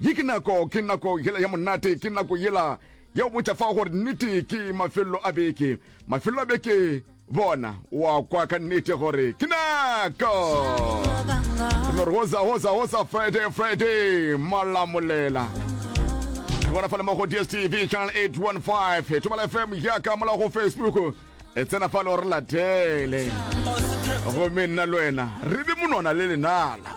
Ye ke nako, ke nako yela ya monate, ke nako yela ya go botša fa gore nnete ke mafelelo a beke. Mafelelo a beke, bona, wa kwa ka nnete gore ke nako. Re no re hoza, hoza, hoza, Friday, Friday, malamolela. Re bona fale mo go DSTV channel 815, Thobela FM ya ka mola go Facebook. E tsena fale o re latele. Gomme nna le wena re le monwana le lenala.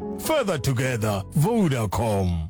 Further together, Vodacom.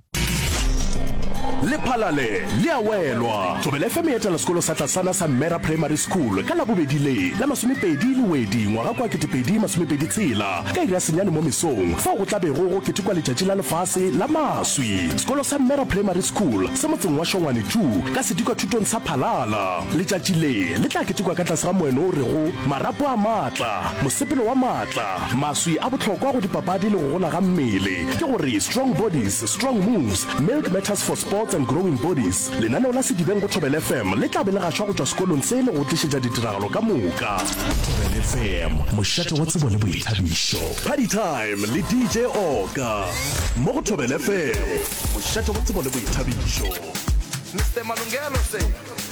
Lephalale le a welwa. Thobela FM e etela sekolo sa tlasana sa Mmera Primary School ka Labobedi le la masomepedi le wedi ngwaga kwa ketepedi masomepedi tshela ka iri ya senyane mo mesong fao go tla bego go ketekwa letšatši la lefase la maswi. Sekolo sa Mmera Primary School se motseng wa Shongwane 2 ka sedikwathutong sa Phalala. Letšatši le le tla ketekwa ka tlase ga moeno o rego Marapo a Maatla, Mosepelo wa Maatla. Maswi a bohlokwa go dipapadi le go gola ga mmele ke gore Strong Bodies, Strong Moves, Milk Matters for Sports and Growing Bodies, lenaneo la Sedibeng go Thobela FM le tla be le gašwa go tšwa sekolong se le go tlišetša ditiragalo ka moka. Thobela FM, mošate wa tsebo le boithabišo. Party Time le DJ Oka mo go Thobela FM, mošate wa tsebo le boithabišo. Mister Malungelo se.